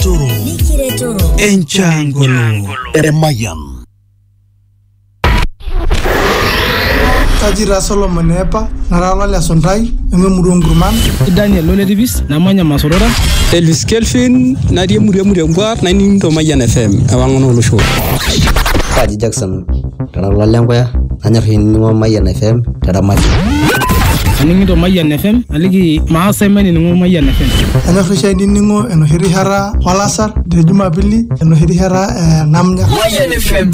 Toro. Mikire Toro. Enchangolo. Emayan. kaji taa solomon epa nara lole suntai ememurua nkurman daniel loletipis namanya masorora elis kelvin natii emurua emurua embuar naning to mayian fm ewang'an olosho kaji jackson Kara ilo le nkuya nanyor ainining'o Mayian FM te Ramati. Aning'ito Mayian FM aliki maasa emenining'o Mayian FM. Kanyor oshi ainining'o enoshi rishata olasar te Jumapili enoshi rishata ee namnya. Mayian FM.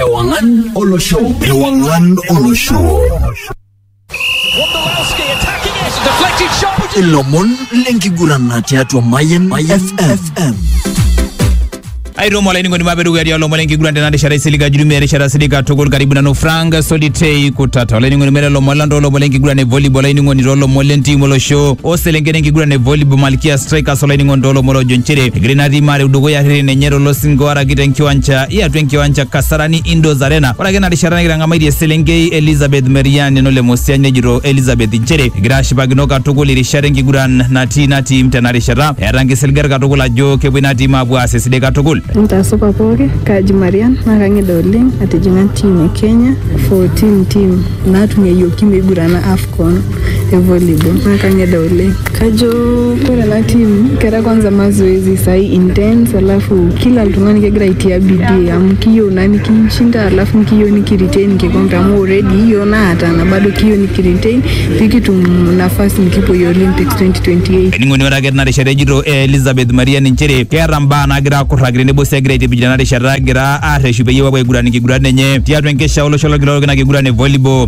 Ewang'an olosho. Ewang'an olosho. ilomon lenkiguran tiatua Mayan FM. aitomo olainining'oni maa pedukuya tialo lomon enkiguran tena rishata isilig ajurumia erishata silig katukul karibu nanu frank solitei kutata olainining'oni mere lomon lang toolomon lenkiguran e volleyball olainining'oni toolomon lentim olosho oselenken enkiguran e volleyball malkia strikers olainining'oni toolomon ojo nchere egira ina tim areu dukuya rreren enye tolosingo araki tenkiwanja iatua enkiwanja kasarani indoors arena Ore ake ina rishata nikitang'amaitie eselenkei Elizabeth Merian neno le Mosiany nejito Elizabeth inchere egira ashipakino katukul irishat enkiguran natii ina tim tena rishata eeta nkisiligat katukul ajo kepuo ina tim aapuo aas esidai katukul. Ntaasupa pooki, kaaji Marian naa kang'ida oleng atijing'a ntiim e Kenya 14 ntiim naatung'ayioki meigurana Afcon. e volleyball naa kang'ida oleng kajo ore ena team kera kwanza mazoezi sai intense alafu kila oltung'ani kegira aitia bidii amu kiyieu naa nikinshinda alafu kiyieu nikiretain enkikombe amu already yioo naatana bado kiyieu nikiretain pikitum nafasi nikipuoyie Olympics 2028 Ening'oni ore ake tena rishata ejito Elizabeth Mariani nchere keeta mbaa naagira akurraki tenebo sii egira aitipij tena rishata egira arreshu peyie epuo aiguran nkiguran enye tiatua enkesha olosho lolkila orok ina kiguran e volleyball.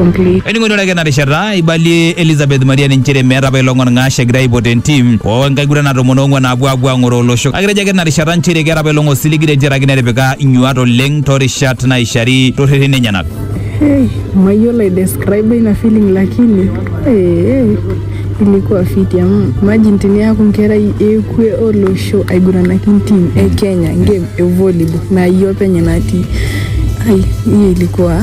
Ening'oitore ake ena rishata eibalie Elizabeth Maria nchere meeta apa ilo ng'orng'ash egira aipot entim oo nkagurana tomon oong'uan naapuo aapuo aang'oroo olosho kake etejo ake ina rishata nchere keeta apa ilo ng'osiligi tentiaraki netipika inyuaat oleng toorishat naaishari toorreteni enyenak. Hey, mayiolo ai describe ina feeling lakini ee ilikuwa fiti amu imagine teniaku nkerai ekwe olosho aiguranaki ntim e Kenya game e volleyball naa iyie openy natii ai hiyo ilikuwa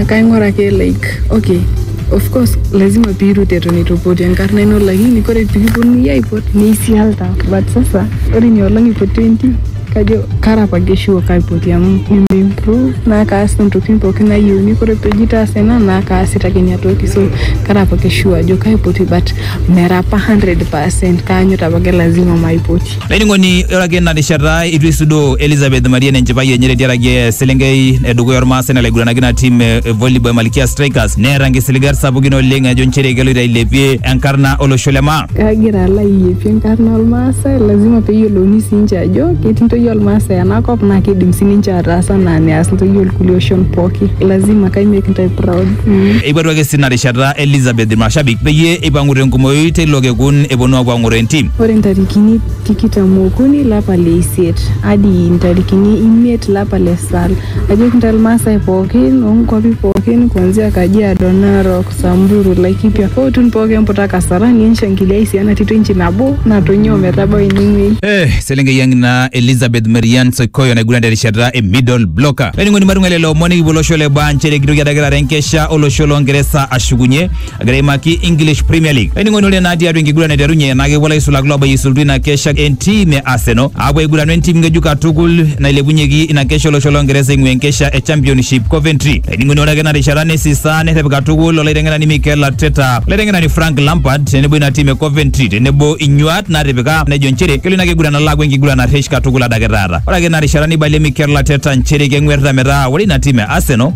Akaing'uraki like okay of course lazima piirut eton eitu ipoti enkarna ino lakini kore pikiponunui aipot neisialta but sasa ore inia olong ipo 20 kajo kara apake sure kaipoti amu nimimprove naa kaas intokitin pookin nayieuni kore peji taasa ena naa kaasita ake inia toki so kara apake sure ajo kaipoti but mera apa 100% kaanyuta apake lazima maipoti. Laining'oni ore ake ina rishata itu isudoo Elizabeth Marian enchipai enye tetiaraki eselenkei edukuya ormaasai nalaiguranaki ina tim e volleyball e Malkia Strikers neeta nkisiligat sapukin oleng ejo nchere keloito ailepie enkarna olosho le maa. Kagira alo ailepie enkarna olmaasai lazima peyiolouni siinche ajo ketii ntoyie olmaasai enakop naa kidim sininche ataas anaa neas ntoyie olkulie oshon pooki lazima kai make ntae proud mm. Eipotuaki sii ina rishata Elizabeth ilmashabik peyie eipang'u tenkumoi teilo kekun eponu aapuo ang'oro entim. Ore ntarikini tikitam okuni lapa le isiet adi ntarikini imiet lapa le sal, ajoki ntae Ilmaasai pooki oo nkuapi pooki kuanzia Kajiado, Narok, Samburu, Laikipia o Utun pooki emputa Kasarani enshangiliai sii ena tito inchi nabo natonyua ometabau ene wuei. Eh, eselenkei ang ina Elizabeth Marian Soikoyo naiguran terishata e middle blocker. Olainining'oni matung'ai lelo omon nikipuo olosho le baa nchere kitoki adake taata enkesha olosho loo Ngeresa ashukunye egira aimaki English Premier League. Ainining'onore naa tiatua enkiguran aiterunye naa kepuo ilaisulak loobayisultu ina kesha entim e Arsenal aapuo aiguranu entim ng'ejuk katukul nailepunyeki ina kesha olosho Longeresa eing'ua enkesha e Championship Coventry. Ainining'oni ore ake ina rishata neisisa nerrep katukul olaiteng'enani Mikel Arteta, olaiteng'enani Frank Lampard tenebo ina tim e Coventry tenebo inyuaat naatipika nejo nchere kelo ina kiguran alo aaku enkiguran narresh katukul adake taata. Ore ake ina rishata neibalie Mikel Arteta nchere keng'uerrita metaa ore ina tim e Arsenal